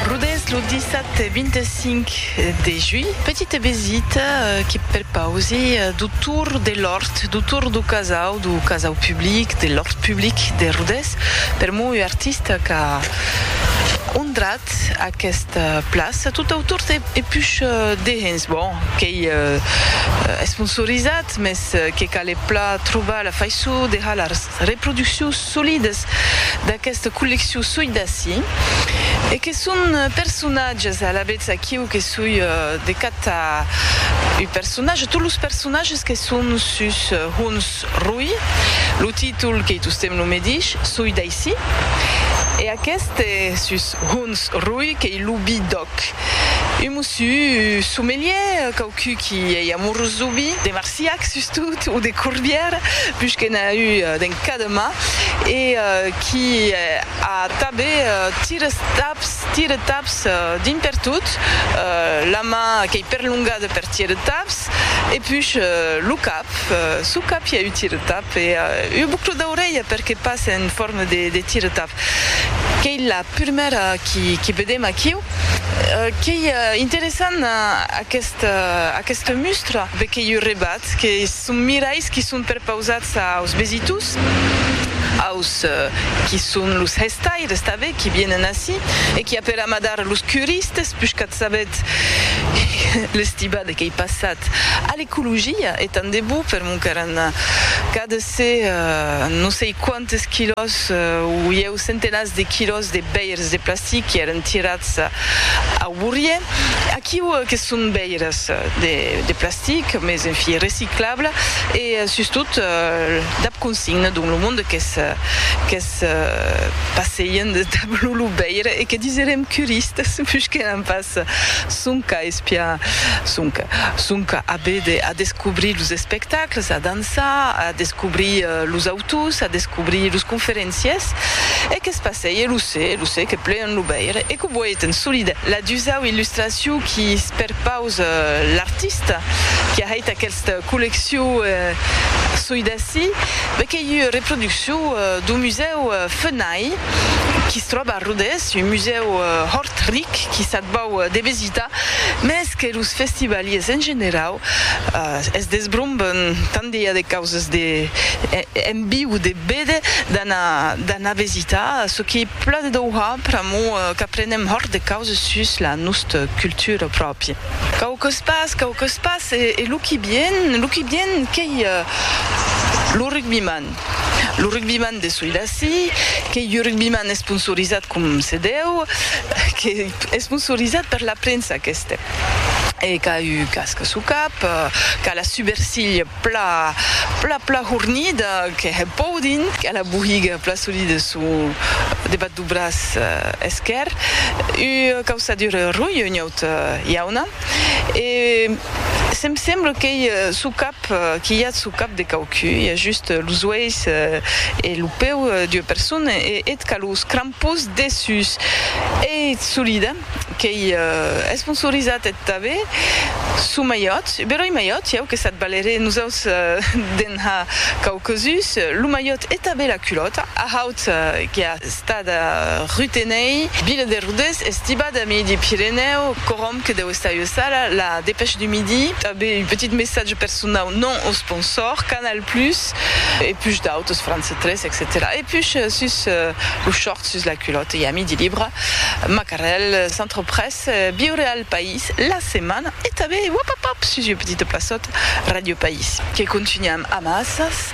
Rodés lo dissabte 25 de julh, petita vesita que perpausi dau tour de l'òrt, dau tour dau casau, dau casau public, de l'òrt public de Rodés, per mon ua artista qu'a ondrat aquesta plaça tot au tour de e push dehens, bon, qu'ei esponsorizat, mès que cale plan trobar la faiçon de halar Reproduccions solidas d'aquesta colleccion soi d'ací e que son personatges alavetz aquiu que soi de catar un personatge, tot los personatges que son sus Hons Roi, lo títol qu'ei tostemps lo medish, soi d'aicí, e aqueste sus Hons Roi qu'ei lo bi-dò. Quauqu un mossus sommelier, quauqu qui ei amorós dau vi, de Marsillac sustot, o de Corbière, puish que n'a eu d'en cademà, e qui a tabe tires taps, tires taps dins pertot, la man qu'ei perlongada per tires taps, e puish lo cap, sou cap i a eu tires taps, e ua boucla d'aurelha, per que pas en forma de tires taps. Qu'ei la prumèra qui vedem aquiu. Qu'ei interessant aquesta mustra be qu'ei un rebat que son mirais qui son perpausats aus vesitors, aus qui son los hèstaires tanben qui vienen ací e qui a per amadar los curistes pus qu'ath sabet l'estibada qu'ei passat a l'ecologia e tant de bo per mon qu'èran cadasé non sei quant. Des quilòs, uieu centenats de quilòs de veires de plastic que èran tirats au bourrier. Aquiu que son veires de plastic, mes en fi reciclable e sustot dab consigna dont lo monde qu'es passeien dab lo lo veire e que diserem curistas pus que n'an pas sonque a espiar sonque sonque a veder a descobrir los espectacles a danzar Comença a descobrir los autors, a descobrir los conferenciers, e que's passèi e lo se, e lo se, que plean lo veire, e que voiten solide la dusau illustracion qui perpausa l'artista qui a hèit aquesta colleccion soi d'ací, ben qu'ei ua reproduccion dau musèu Fenay, qui's tròba a Rodés, un musèu hòrt ric qui s'ac vau de vesitar, mès que los festivaliers en generau, Es desbrombant tant de i a de causes de en viu de bede d'anar vesitar çò qui pla de Doha pr'amor qu'aprenem hòrt de causes sus la nosta cultura pròpia. Quauques pas, quauques pas e lo qui vien, lo qui vien qu'ei lo rugbiman, lo rugbiman de soi d'ací, qu'ei ua rugbiman esponsorizat com se deu, qu'ei esponsorizat per la premsa, qu'es Este. E qu'a un casc suu cap, qu'a la subercilh pla, pla, pla hornida, que hè pòu dint, qu'a la bohiga pla solida suu debat duu braç esquèr, ua causadura rui un iaut iauna. E se'm sembla qu'ei suu cap, qu'i i a suu cap de quauquu, i a just los uelhs e lo peu d'ua persona, e eth qu'a los crampons. Pus dessús ei solida, qu'ei esponsorizat eth Tabe, suu malhòt, beròi malhòt, ieu que s'ath valeré, nosaus de'n ha quauquesus, lo malhòt e tabe la culòta, a haut que a estada Rutenei, vila de Rodés, estibada a Midi Pirenèu, corom que deu estar ua sala, La Dépêche du Midi, tabe un petit messatge personau non au sponsor, Canal Plus e pus d'autos, franc. 3 etcetèra E push sus lo short, sus la culòt e a midi libra, macarèl, centre presse, viure al país, la setmana e tanben wapapap sus ua petita plaçòt, Ràdio País. Que contunham amassas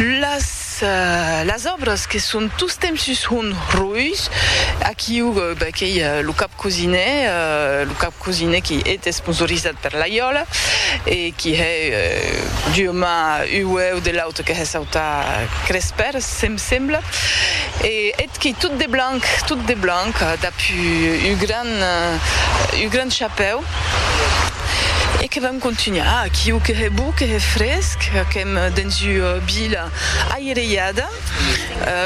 las òbras que son tostemps sus un rois, aquiu, ben qu'ei lo cap. Cosine, lo cap Cosine qui hét esponsorizat per l'Aiòla e qui hè d'ua man ua uèu de l'auta que hè sauta Crespèr, se'm sembla, e hét qui tot de blanc, tot de blanc, dab ua gran, ua gran chapèu, e que vam contunhar aquiu que hè bou, que hè fresc, qu'èm dens ua vila aireiada.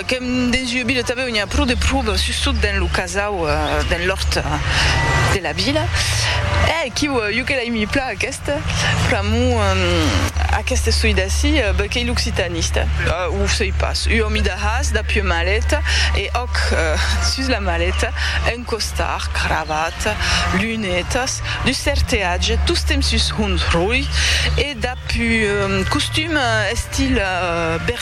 Qu'èm dens ua vila tanben on i a pro de pruba, sustot dens lo casau, dens l'òrt de la vila. Eh! Quiu, jo que l'aimi plan aquesta, pr'amor d'aqueste soi d'ací, ben qu'ei l'occitanista. O sei pas, ua mida has dab ua maleta e òc, sus la maleta, un costar, cravata, lunetas, dus certeatge, tostemp sus un roi e dab un costum estil berber.